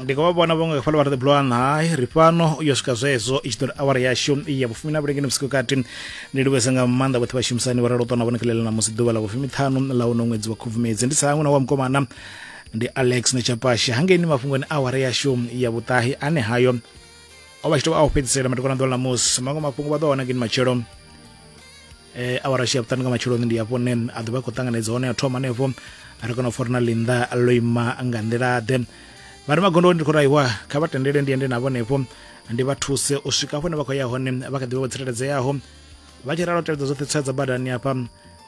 ndi khou vha vhona vhaṅwe fhala vha ri ḓibulwa nae ri fhano u yo swika zwezwo i tshi ḓo ri awara yashu ya vhufumi na vhulengeni vhusiku kati ndi livhese nga maanḓa vhoṱhe vhashumisani vha ralo ṱona vhone khalela na musi ḓuvha ḽa vhufumi ṱhanu ḽa uno ṅwedzi wa khubvumedzi ndi sa hangwe na wa mukomana ndi alex nechapashe hangeini mafhungoni awara yashu ya vhuṱahi ane hayo o vha tshi tou vha a u fhedzisela matikwana ḓuvha ḽa musi maṅwe mafhungo vha ḓo wana ngeni matshelo eh, awara shi ya vhuṱanu nga matsheloni ndi hafho ne a ḓovha khou ṱanganedza hone a thoma hanefho a ri kona u fori na linda ḽo ima nga nḓila ḓe vha ri magondo ndi khou raiwa kha vha tendele ndi ende navho hanefho ndi vha thuse u swika hafho ne vha khou ya hone vha kha ḓivha vho tsireledzeaho vha tshi ralo tevhedza dzoṱhe tswa dza badani hafha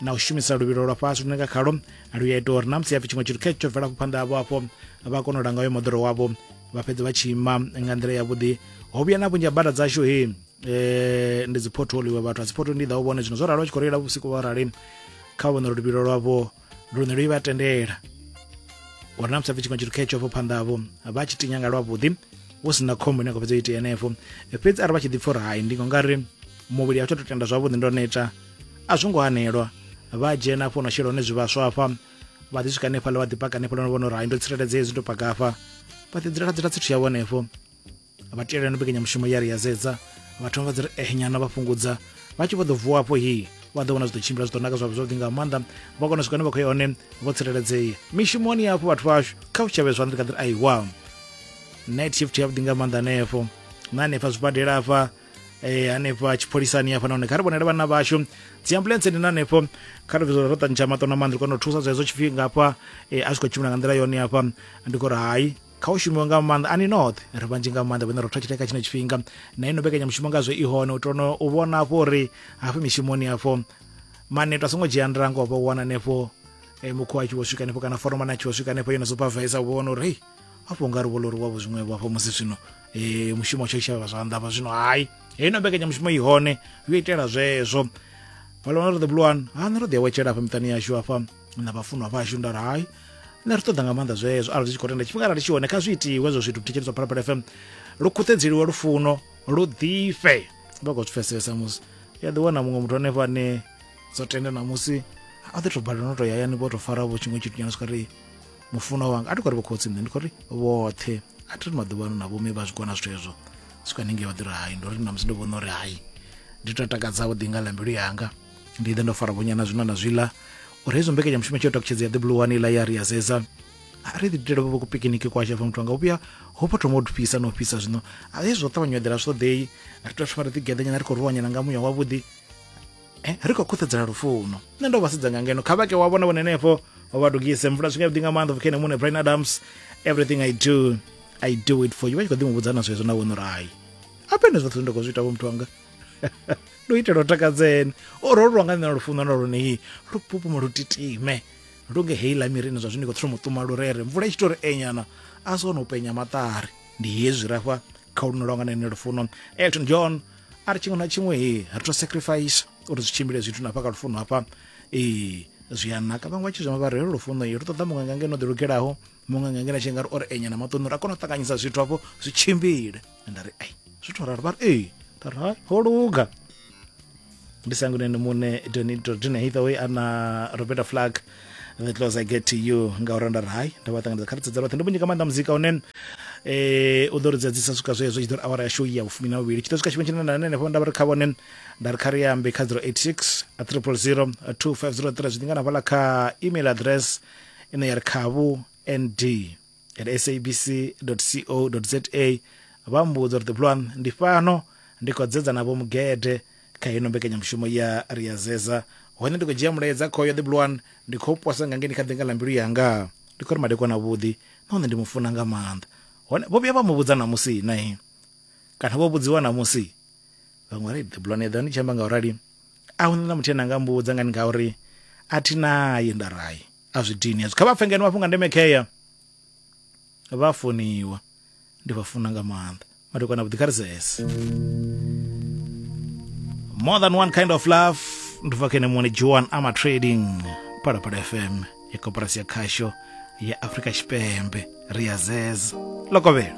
na u shumisa luvhilo lwa fhasi lune nga khalo lu ya ita uri na musi hapfi tshiṅwe tshithu khe tsho bvela phanḓa havho hafho vha kona u langa uyo moḓoro wavho vha fhedza vha tshi ima nga nḓila yavhuḓi ho vhuya na vhunzhi ha bada dzashu hei eh ndi dzi portal iwe vhathu a dzi portal ndi ḓa u vhone zwino zwo ralo tshi khou reila vhusiku vha rali kha vhone ro lubilo lwavho lune lwi vha tendela uri na musafi tshiṅwe tshithu khetsho vho phanḓavho vha tshi tinya nga lwavhuḓi hu si na khombo ine khou fhedza itea henefho fhedzi arali vha tshi ḓi pfha uri hai ndi ngo nga ri muvhili a tsho to tenda zwavhuḓi ndo neta a zwo ngo hanelwa vha dzhena afho na shela hone zwivhaswa afha vha ḓi swika hanefhaḽa vha ḓi paka hanefhaḽa no vhona uri hai ndo tsireledzea hezwi ndo paka afha vha ḓi dzula dzula tsithu yavho henefho vha tiyela yone mbekanyamushumo ya ri ya zedza vha thoma vha dzi ri eh nyana vha fhungudza vha tshi vho ḓo vuwa afho hi vha ḓo vhona zwi ḓo tshimbila zwi ḓo naka zwavho zwavhuḓi nga maanḓa vha kona swika ne vha khou ya hone vho tsireledzea mishumoni yafho vhathu vhashu kha u tshavhe zwanḓa ndi kha ḓiri aiwa night shift yavhuḓi nga maanḓa hanefho na hanefha zwibadela afha eh hanefha tshipholisani hafha nahone kha ri vhonele vhana vhashu dzi ambulance ndi hanefho kha ri ro tantsha maṱo na maanḓa ri kona u thusa zwa hezwo tshifhinga hafha eh, a zwi khou tshimbila nga nḓila yone hafha ndi khou ri hai kha u shumiwa nga maanḓa ani noṱhe ri vhanzhi nga maanḓa vhane ro thathile kha tshino tshifhinga na ino mbekanyamushumo ngazwo i hone u tono u vhona afho uri hafho mishumoni afho maneto a songo dzhia ndango vha wana hanefho eh, mukhu a tshi vho swika hanefho kana foromani a tshi vho swika hanefho yo no supervisa u vhona uri hei afho nga ri vho lori wavho zwiṅwevho afho musi zwino um mushumo tsho shavha zwanḓa vha zwino hayi heino mbekanyamushumo i hone yo itela zwezwo vha lona ri the blue one ha nṋe ro ḓi awetshela afha miṱani yashu afha na vhafunwa vhashu nda ri hai nṋe ri ṱoḓa nga maanḓa zwezwo arali zwi tshi khou tenda tshifhinga arali tshi hone kha zwi itiwe hezwo zwithu thetsheledzwa phalaphala fm lu khuṱhedzeliwe lufuno lu ḓifhe vha khou zwi pfesesa musi ya ḓiwana muṅwe muthu hanefho ane dzo tenda na musi a ḓi to balelwa no to yayani vho to fara vho tshiṅwe tshithu nyana swika ri mufuno wanga a ti khou ri vho khotsi nṋe ndi khou ri vhoṱhe a thi ri maḓuvha ano na vhomme vha zwi kona zwithu hezwo swika haningei vha ḓi ri hai ndo ri na musi ndi vhona uri hai ndi to takadza vho ḓi nga ḽa mbilu yanga ndi ḓe ndo fara vhonyana zwino na zwiḽa uri hezwo mbekanyamushumo tshi yo takutshedza ya ḓibulu wani iḽa ya ri ya zeza a ri ḓi dutela vho kupikiniki kwasha fa muthu anga u vhuya ho pho thoma u fhisa na u fhisa zwino a zwi zwo ṱavhanya u eḓela zwi ṱoḓei ri tea thoma ri ḓi geḓanyana ri khou ruwanyana nga muya wavhuḓi eh, ri khou khuṱhedzela lufuno nṋe ndo vha sedza nga ngeno kha vhake wa vhona vhone henefho wa vha dugise mvula zwinga vhuḓi nga maanḓa vhukhene muṋe brian adams everything i do i do it for you vha tshi kho ḓi mu vhudza na zwezwo na wono rai apene zwoṱhe zwine nda khou zwi ita vho muthu wanga ndo itela u takadzeni o ro lwa nga nṋe lufuno na lune lu pupuma lu titime lu nge heila mirini zwa zwino i khou thoma u ṱuma lurere mvula i tshi tori enyana a si ono penya maṱari ndi hezwi rafha kha luno lwa nga nṋe lufuno elton john a ri tshiṅwe na tshiṅwe he ri to sacrifice uri zwi tshimbile zwithu na hafha kha lufuno hafha ee zwi a naka vhaṅwe vha tshi zwima vha re lufuno lu ṱoḓa muṅwe nga ngeno ḓi lugelaho muṅwe nga ngena tshi nga ri o ri enya na maṱoni ra kona u ṱanganyisa zwithu hafho zwi tshimbile nda ri ai zwithu raro vha ri ee nda ri hai ho luga ndi sanguneni muṋe donito dina hithawe a na roberta flag the close i get to you nga uri nda ri hai ndo vha ṱanganedza kha ri tsedzela vhoṱhe ndo vhunyi nga maanḓa muzika une eh u ḓo ri dzadzisa swika zwezwo tshi ḓo ri awara ya show ya vhufumi na vhuvhili tshi ḓo swika tshifhinga tshine na henefho nda vha ri kha vhone nda ri kha ri ambe kha 086 300 2503 zwi ḓingana hafhaḽa kha email address ine ya ri khavhu nd at sabc.co.za vha mmbudza uri Thipulwan ndi fhano ndi khou dzedza na vho Mugede kha ino mbekanyamushumo ya ri a zeza hone ndi khou dzhia mulaedza khoyo Thipulwan ndi khou posa nga ngeni kha ḓinga ḽa mbilu yanga ndi khou ri madekwana a vhuḓi nahone ndi mu funa nga maanḓa hone vho vhuya vha mu vhudza na musi na kana vho vhudziwa na musi vhaṅwe ri Thipulwan eḓani tshi amba nga u rali a hu na muthu ane anga mbudza ngani ngauri a thi naye nda rai a zwi dini hezwo kha vha pfe ngeno mafhungo a ndeme khea vha funiwa ndi vha funa nga maanḓa madokwana vhuḓi kha ri sese more than one kind of love ndi bva kene muone joan ama trading phalaphala fm ya koporasi ya khasho ya afrika tshipembe ri ya zeza lokovhela